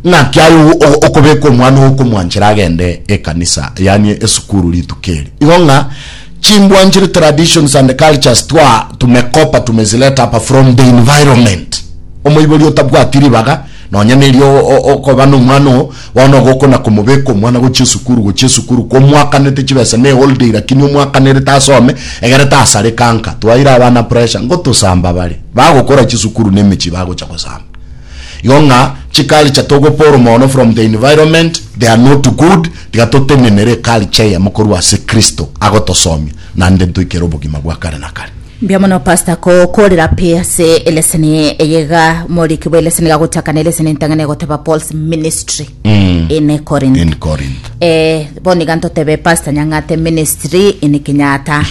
Naki aye okobeka omwana oo okomwanchera agende ekanisa, yaani esukuru rituko eri. Igo ng'a chimbwanchire traditions and cultures twa tumekopa tumezileta hapa from the environment. Omoibori otabwati ribaga nonya nerio okoba nomwana oo bono igo okona komobeka omwana gochia esukuru gochia esukuru komwakanete chibesa ne holiday lakini omwakanerete asome egere tasareka nka twaire abana pressure ngotosamba bare bagokora chisukuru nemechi bagocha gosamba Igo ng'a chiculture togo pull mono from the environment they are not good tiga totenenere eculture eyemo korwa ase Kristo agotosomia naende ntoikere obogima bwa kare na kare. Mbuya mono pastor ko korera pi ase eleseni eye iga morikigwe eleseni iga gochakana eleseni entang'ani egoteba Paul's ministry. in Corinth. In Corinth. Eh, bono iga ntotebe Pastor Nyang'ate Ministry in Kenyatta.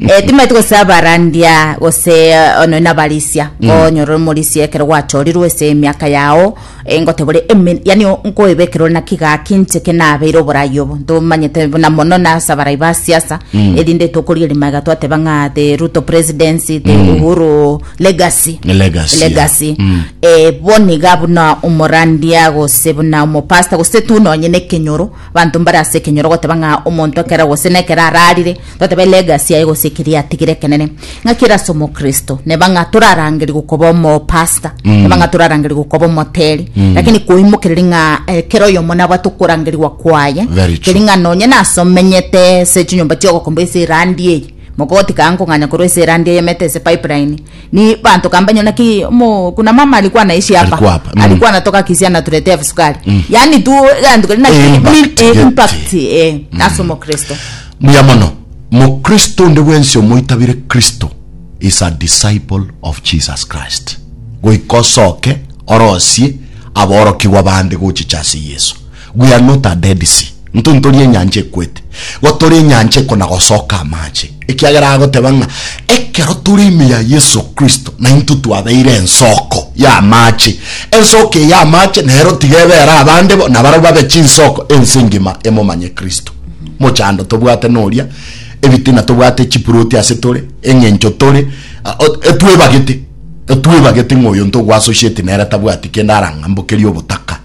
Eh, timaeti gose abarandia gose eh, ono inabarisia onyora omorisia ekero gwachorirwe ase emiaka yao eh, ngotebore emen yani o- nkoebekera ore naki gaki inche ke nabeire oborai obo ntomanyete buna mono nasa abarai ba siasa erinde tokorigeria magega twateba ng'a the ruto presidency the uhuru Legacy. Legacy. Legacy. Mm. Eh, boni ga buna omorandia gose buna omopasta gose tu nonye ne kenyoro banto mbare ase kenyoro goteba ng'a omonto ekero gose ne ekero ararire totebe legacy aye gose ekeri atigire kenene ng'a kera ase omokristo neba ng'a torarangeri gokoba omopasta mm. neba ng'a torarangeri gokoba omoteri mm. lakini koimokereri ng'a ekero eh, oyomo nabwate okorangerigwa kwaye keri ng'a nonye nasomenyete se chinyomba chiogokomba ase erandi eye Mogoti kaa nkong'anya korwa ase erandi eyemete ase pipeline, ni banto kaa mbanyore naki omo kuna mama ari kwana ici apa, Arikwa apa, mm. ari kwana togakisia na turete ebisukari. Yaani tu egento keria naki Impact mi- eh, gete. impact, eh, ase omokristo. Mbuya mono. Mokristo onde bwensi omoitabire Kristo is a disciple of Jesus Christ. Goika osoke orosie aborokigwa bande gochicha ase Yeso. We are not a Dead Sea, intwe ntori enyancha ekwete, gotora enyancha ekona gosoka amache, ekiagera agoteba ng'a ekero tore ime ya Yeso Kristo naintwe twabeire ensoko y'amache. Ensoko eye y'amache nero tiga ebe ere abande bo, nabarabwo babe chinsoko ense engima emomanye Kristo. Mochando tobwate noria, ebitina tobwate chipuroti ase tore, eng'encho tore, ah, o- etwebagete, etwebagete ng'a oyonto ogwasociate nere tabwati kende arang'ambokerie obotaka.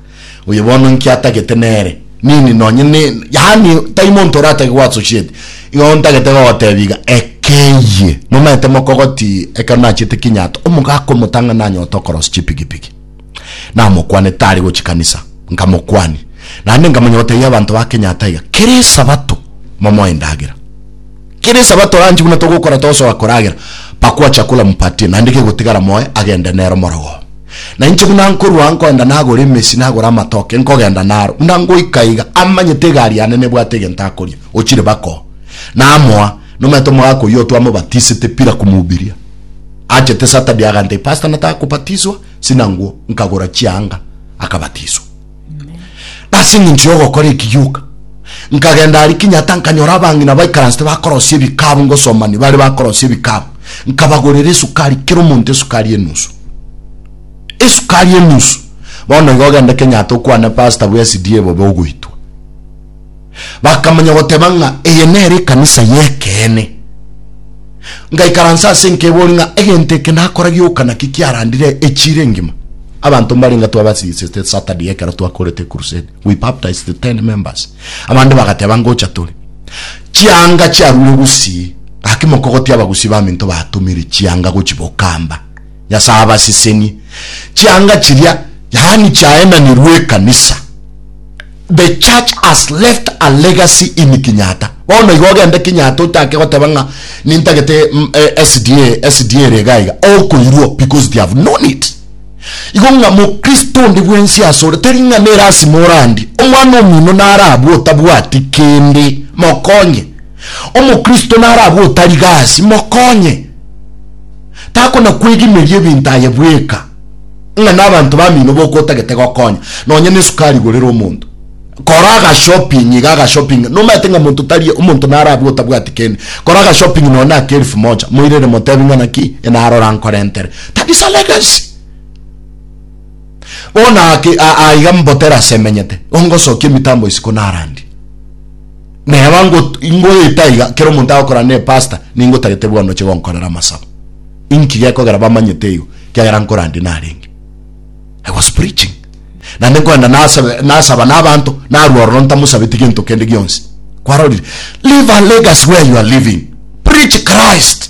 Oyo bono inki atagete nere? Nini nonye ne, yaani tai monto oratake go associate. Igo ntagete gogotebia iga, ekeyie momanyete mokogoti ekero nachete kinyato omogaka omotang'ani nanyora tokorosi chipigipigi. Namokwane tari gochi kanisa, nkamokwania. Naende nkamanya gotebia abanto ba kenyatta iga, kera esabato momoe endagera. Kera Esabato ranchi buna togokora tosoa koragera, pakua chakula mpatie, naende kegotigara moe agende nere omorogo oo. Na inche buna nkorua nkoenda nagore emesi nagore amatoke nkogenda naro, buna ngoika iga amanyete egari yane nebwate egento akoria, ochire bako. Namoa, nomanyete omogaka oyio twamobatisete pira komubiria. Achete Saturday agantebia, Pastor nataka kobatiswa, sinanguo, nkagora chianga, akabatiswa. Nase eng'encho y'ogokora eki gioka, nkagenda aria Kenyatta nkanyora abang'ina baikaransete bakorosia ebikabu ngosomani bare bakorosia ebikabu nkabagorera esukari kera omonto esukari enusu esukari enusu bono iga ogende Kenyatta okwane pastor bwa SDA bobe ogoitwa Bakamanya goteba ng'a eye nere ekanisa y'ekeene. Ngaikaransa ase enka ebori ng'a egento eke nakora gioka naki kiarandire echiira engima. Abanto mbarenga twabasingisete Saturday ekero twakorete crusade. We baptized 10 members. Abande bagateba ngocha tore. Chianga chiarure Gusii. Gaki mokogotia abagusii baminto batomire chianga gochi Bokamba. Nyasae abasesenie chianga chiria, yaani chiaenanirwe ekanisa. The church has left a legacy in Kinyata. Bono iga ogende Kinyata ochake goteba ng'a nintagete mm, eh, SDA, SDA ere iga iga, okoirwo because they have known it. Igo ng'a mokristo onde bwensi asore tari ng'a nerasima orandie omwana omino narabwe otabwati kende, mokonye. Omokristo narabwe otari gasi, mokonye. takona-kwegimeria ebinto aye bweka, ng'a nabanto bamino boka otagete gokonya, nonya nesukari gorere omonto. Kora agashopping iga agashopping, nomanyete ng'a monto tari omonto narabwo otabwati kende, kora agashopping nonya ake elfu moja, moirere motebi ng'a naki enarora nkorentere. That is a legacy. Bono ake a- aiga mboterase emenyete, ongosokia emitambo isiko narandie. Neba ngot- ingoeta iga, kera omonto agokora ne pastor, ningotagete bono oche gonkorera amasabo. Inki gekogera bamanyete igo? Kiagera nkorande narenge. I was preaching. Naende nkoenda nasabe- nasaba na abanto, narwa ororo ntamusabeti gento kende gionsi. Kwarorire? Leave a legacy where you are living. Preach Christ.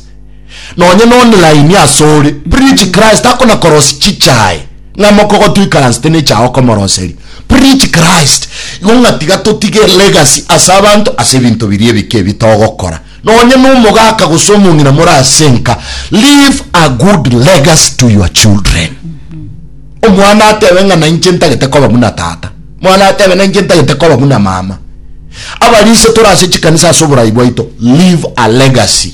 nonye nonlaini asore preach Christ akona korosi chichae ng'a mokogo tuikaransete nechae okomoroseri preach Christ igo ng'a tiga totige legacy ase abanto ase ebinto biria ebike ebi togokora nonye nomogaka gose omong'ina more ase nka leave a good legacy to your children omwana atebe ng'a nainche ntagete koba buna tata mwana atebe nainche ntagete koba buna mama abarise tore ase chikanisa ase oborai bwaito leave a legacy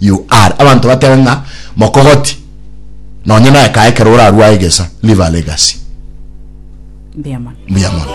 you are abanto batebe ng'a mokogoti nonye naye kae ekero orarue aegesa leave a legacy. Mbuya mono. Mbuya mono.